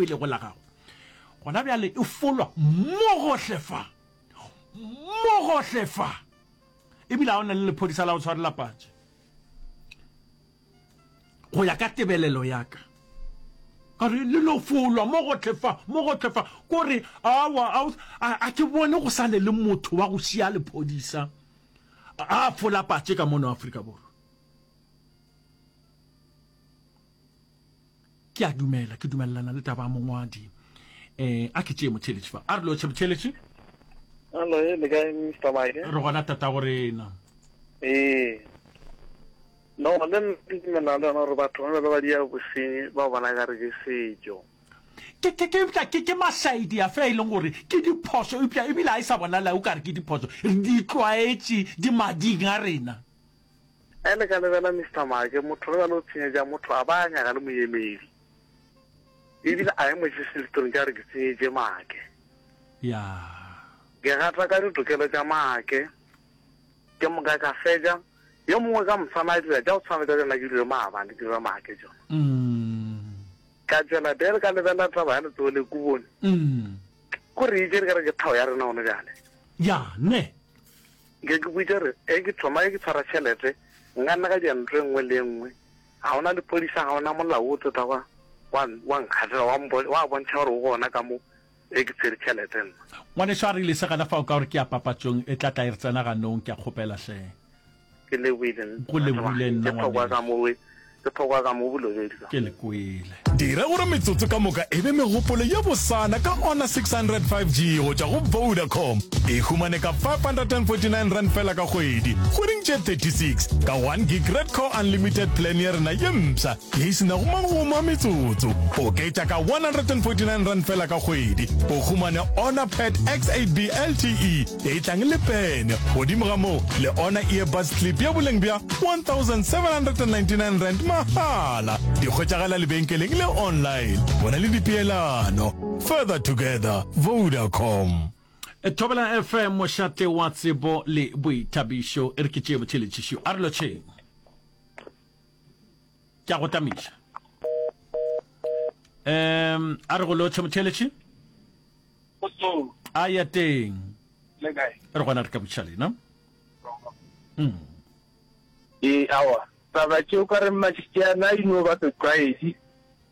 e lego la gago gona bjale e folwa mo gohle fa, mo gohle fa, ebile a o na le lephodisa la go tshwarela patše go ya ka tebelelo ya ka a re le no folwa mo gotlhe fa mo gotlhe fa ko re awa a ke bone go sane le motho wa go šia lephodisa a fola patše ka mono Afrika Borwa ke a dumela ke dumelelana le taba mongwadi eh a ke tšee motšheletši fa a re lotšhe motšheletši Hello, eh, le kae Mr. Mike? re gona tata go rena Ee. No, le nna ke dumelana le yona gore batho ba bjalo ba dia bosenyi ba bona ka re ke setšo. ke ke ke eupša ke ke mašaedi a fea e leng gore ke diphoso eupša ebile a e sa bonala o ka re ke diphoso re di tlwaetše di mading a rena Ge le ka lebela Mister Maake, motho ge bjale o tshenyetša motho a ba a nyaka le moemedi. Ebile a emo Jesu Listong tša gore ke tsenyetše Maake. Ya. Ke gata ka ditokelo tša Maake. Ke moka ka fetša. Yo mongwe ka mosana a dira tša go tshwana le tša tšona ke dira maabane, ke dira Maake tšona. Mm. Ka tšwela pele ka lebela taba ya letsogo le kubone. Mm. Ko re itše re ka re ke tlhago ya rena gone bjale. Ya, ne. Nke ke boditše gore ge ke thoma ge ke tshwara tšhelete nka nna ka dira ntho e nngwe le e nngwe, ga go na lepodisa, ga go na molao o tlo tla wa, wa, wa nkgahlelwa, wa mbo, wa bontšha gore o gona ka mo ge ke tshwere tšhelete nna. Ngwanešu a rile, Se gana fao ka gore ke ya papatšong e tla tla e re tsena ganong, ke a kgopela hle. Ke lebohile nna, Go lebohile nna ngwanešu. Ke phoka ka mo bolobedi ka. Ke le kwele. Dira gore metsotso ka moka e be megopolo ye bosana ka Honor 600 5G go tšwa go Vodacom. E humane ka R549 fela ka kgwedi, kgweding tše 36, ka one gig Red Core Unlimited plan ya rena ye mpsha ye e se nago magomo a metsotso. Oketša ka R149 fela ka kgwedi, o humane Honor Pad X8B LTE. Etlang le pene, godimo ga moo le ona earbuds clip ya boleng bja 1799 rand mahala. Di hwetšagala lebenkeleng le online. Bona le dipeelano. Further together, Vodacom. Thobela FM mošate wa tsebo le boithabišo e re ke tšee botšheletšišo a re lotšheng ke a go tamiša um a re go lotšhe motšheletši Kgotsong. A ya teng. Le kae? Re gona re ka botšiša lena. Mm. Ee, awa. Taba tšeo ka re Mašikana e no ba setlwaedi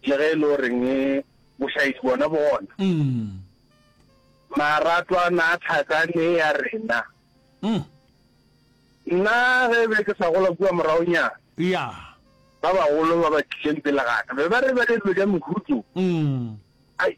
le ge e le goreng e bošaedi bona bona. Mm. Maratwana a tlhakane ya rena. Mm. Nna ge be ke sa gola kua moragonyana. Ya. Ba bagolo ba ba tlileng pele ga ka be ba re ba le dilo tša mehutso. Mm. Ai.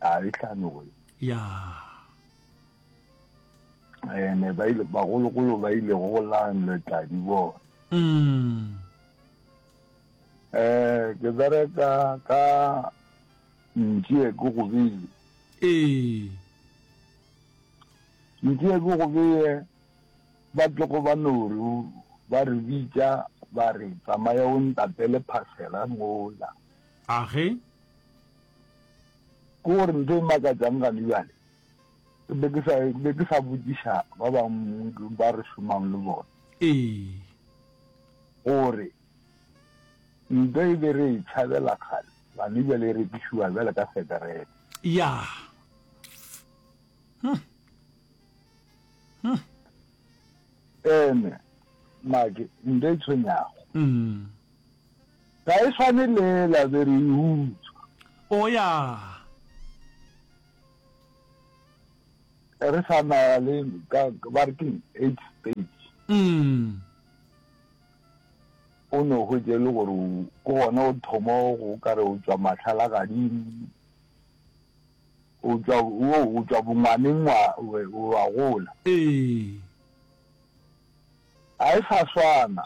a e hlanoe ya ene ba ile bagologolo ba ile go lanle tladi bona mm. eh ke bereka ka ntšie ke go bile ee ntšie ke go bile ba tlogo ba noru ba re bitša ba re tsamaya o ntatele phasela mola age Ke gore ntho e makatsang gane bjale, ke be ke sa, ke be ke sa botšiša ba bangwe ba re šomang le bona, Ee. gore ntwa e be re e tšhabela kgale, gane bjale e rekišiwa bjale ka seterete. Ya. Huh. Huh. Ene, Make, ntwa e tshwenyago, Mm. Ga e swane le ela be re e utswa. O ya. Re sa na le ka ba re keng eight stage. Mm. O ne o hwetše le gore ke gona o thoma go ka re o tswa matlhala gadimo o tswa o o tswa bongwaneng wa wa gola. Ee. A e sa swana.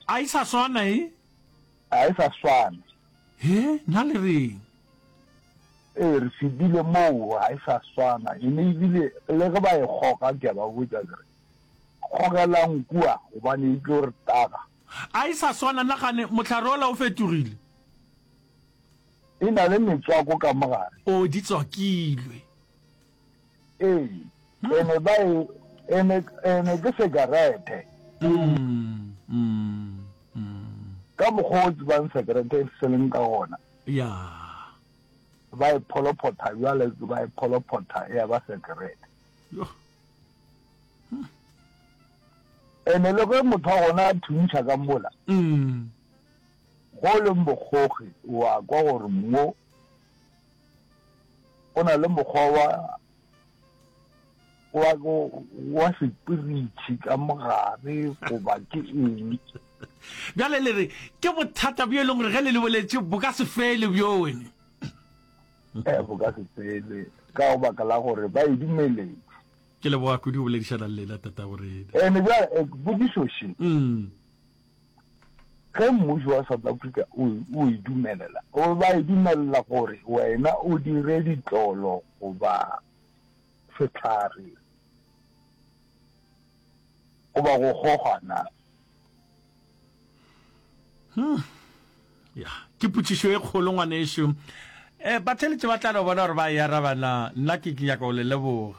A e sa swana e. A e sa swana. He, na le reng? Ee, re fedile moo, a e sa swana. E ne ebile le ge ba e kgoga, ke a ba botša ke re, Kgogelang kua, gobane e tlo re taga. A e sa swana, nagane, mohlare ola o fetogile. E na le metswako ka mogare. O di tswakilwe. Ee, ene ba e, ene, ene ke sekarete. Mm, mm, mm. Ka mokgwa o tsebang sekarete e se leng ka gona. Ya. Ba e pholophotha jwale, ba e pholophotha ya ba sekarete. Yo. Hmm. Ene le ge motho wa gona a thuntšha ka mola. Mm. Go leng bogogi, wa kwa gore mo go na le mokgwa wa wa go wa sepiritšhi ka mogare goba ke eng bjale le re ke bothata bjo e leng gore ge le le boletše bo ka se fele bjone ee eh, bo ka se fele ka go baka la gore ba e dumeletse ke leboga kudu go boledišana le lena tata gorena ene bjale eh, bodišoše mm. Ge mmušo wa South Africa o, o e dumelela, o ba e dumelela gore wena o dire ditlolo goba sehlare goba go goga na? Hmm. Ya, ke potšišo e kgolo ngwanešu. Eh, batheletše ba tla no bona gore ba e araba na. Nna ke ke nyaka go le leboga.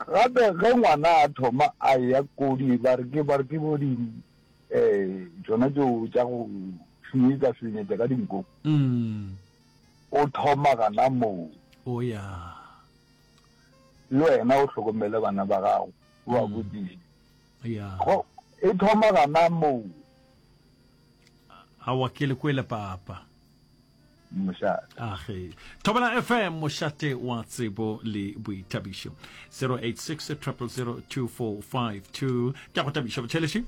Gape ge ngwana a thoma a ya ko di ba re ke ba re ke bo di eh tsona tšeo tša go šunyetsa šunyetsa ka dinko mm. o thoma gana moo o oh, ya le wena o hlokomele bana ba gago o a mm. botsise ya go e thoma gana moo a wa ke le kwele papa mošate age thobela fm mošate wa tsebo le boithabišo 086 0002452 ke go tabiša botšhelešhi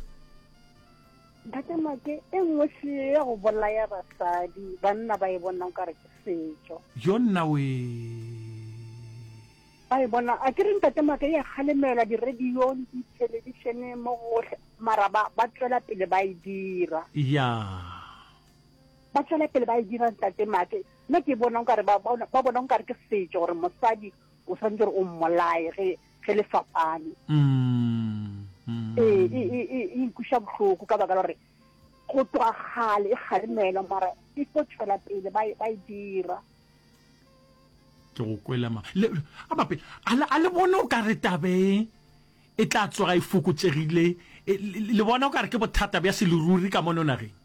ntatemake e nngwe seo ya go bolaya basadi banna ba e bonang ka re ke setso yo nna we ba e bona a ke re ntatemake ya kgalemelwa diradiong dithelebišeneng mo gotlhe mara ba tswela pele ba e dira ya yeah. ba tšwela pele ba e dira ntate make nna ke bona nkare ba bona nkare ke setšo gore mosadi o tshwanetse gore o mmolaye ge ge le fapane mm, mm. ee e, e, e, e nkuša bohloko ka baka la gore go tloga kgale e kgalemelwa mara e tlo tšwela pele ba e dira ke go kwelema a bape a le bone o ka re tabeng e tla tsoga e fokotšegile le bona o ka re ke bothata bja seleruri ka mono nageng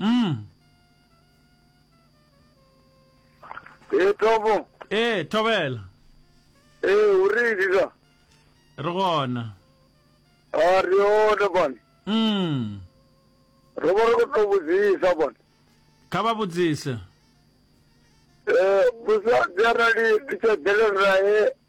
Mm. ee tobo ee thobela ee o re dira re gona a re yone bone mm re bo re go tlo botsisa bone kha ba botsise um bosa jana di ditšedeleng rae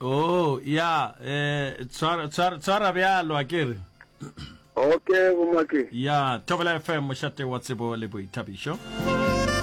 Oh, ya, eh, tshwara, tshwara, tshwara bjalo, a ke re. Okay, bomake. Ya, Thobela FM, mošate wa tsebo le boithabišo.